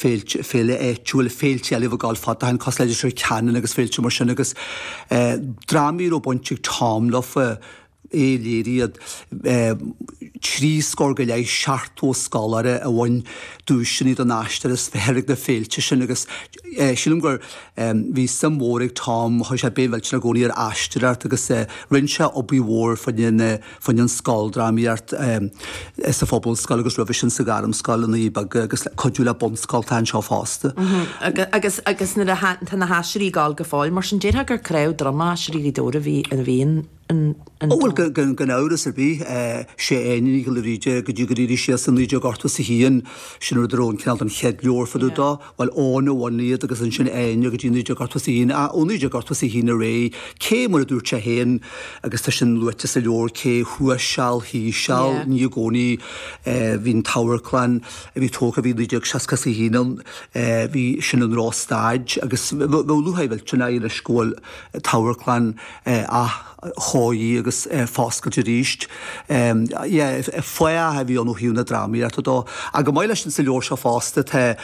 féilte, féile áitiúil, féilte eile a bhí ag gabháil fad, d'achan cosúil le Leitir Ceanainn agus féilte mar sin agus eh, drámaí a raibh baint ag Tom leofa, é a léirigh iad eh, trí scór go leith seachtó scoláire a bhain duaiseanna don aisteoir is fearr ag na féilte sin agus eh, sílim gur eh, bhí suim mhór ag Tom, chuir sé béim mhillteanach i gcónaí ar aisteoireacht agus eh, rinne sé obair mhór faoin eh, Faoin scoildrámaíocht sa phobalscoil agus roimhe sin sa ghairmscoil i nDoirí Beaga agus ag cuidiú le bunscoltacha anseo fosta. Agus agus nuair a tá na haisteoirí ag gabháil go fóill mar sin déarfá gur cnámh droma Aisteoirí Ghaoth Dobhair a bhí a bhí in in in Ó bhuel gan gan amhras ar bith sé Áine Nic Giolla Bhríde go dtí go dtí sílimse 1981 sin a dtearn cineál an chéad leabhar fá dtaobh dó Bhuel, Áine a bhunaigh iad agus ansin Áine go dtí 1981, ah, ó 1981 ar aghaidh, cé, mar a dúirt sé féin, agus tá sin luaite sa leabhar, cé thuas seal, thíos seal, Yeah. ní i gcónaí, eh, bhí an t-amharclann a bhí tógtha, bhí 1961 ann, eh, bhí, sin i ndrochstaid agus bheadh lúcháir mhillteanach air anois go bhfuil an t-amharclann, eh, ath, chóirithe agus foscailte arís. Fathach a bhí ann ó thaobh na drámaíochta dó. Ach chomh maith leis sin sa leabhar seo fosta tá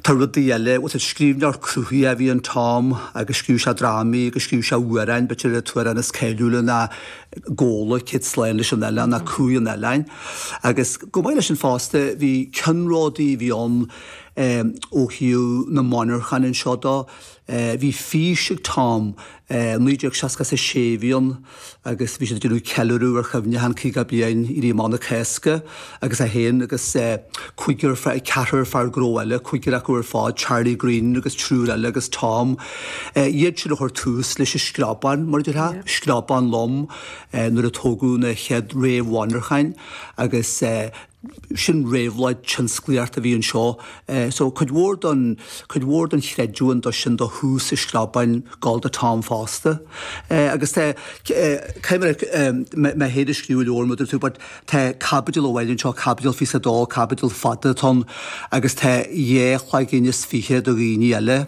tá rudaí eile. Bhuel an scríbhneoir cruthaitheach a bhí in Tom agus scríobh sé drámaí agus scríobh sé amhráin, b'fhéidir an t-amhrán is cáiliúla ná Gabhla, Céad Slán leis an Oileán ná Cumhaidh an Oileáin. Agus chomh maith leis sin fosta bhí ceannródaí a bhí ann ó thaobh na monarchan anseo dó. a Bhí fís ag Tom. 1966 a bhí ann agus bhí siad ag déanamh ceiliúradh ar chuimhneachán 50 bliain Éirí Amach na Cásca agus é féin agus cúigear fear, ceathrar fear gnó eile, cúigear acu ar fad, Charlie Green agus triúr eile agus Tom. Iad siúd a chuir tús leis an screabán, mar a déarfá, screabán lom nuair a tógadh na chéad réamh-mhonarcháin agus, sin réabhlóid tionsclaíochta a bhí anseo. So cuid mhór don, cuid mhór don chreidiúint dó sin do thús an Screabáin ag gabháil do Tom fosta. Agus tá, cé mar a, mé féin a scríobh an leabhar mar a dúirt tú but tá caibidil amháin anseo, caibidil 22, caibidil fada atá ann agus tá dhá chloigeann is fiche do dhaoine eile.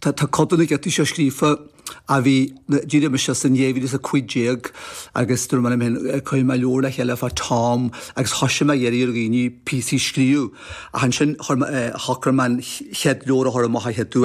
Tá codanna de seo scríofa a bhí na d'éirigh mise as in 2015 agus dúirt mé an t-am sin cuirfidh mé leabhar le chéile fá Tom agus thosaigh mé ag iarraidh ar dhaoine píosaí a scríobh ach ansin chuir mé shocraigh mé an chéad leabhar a chur amach a chéaduair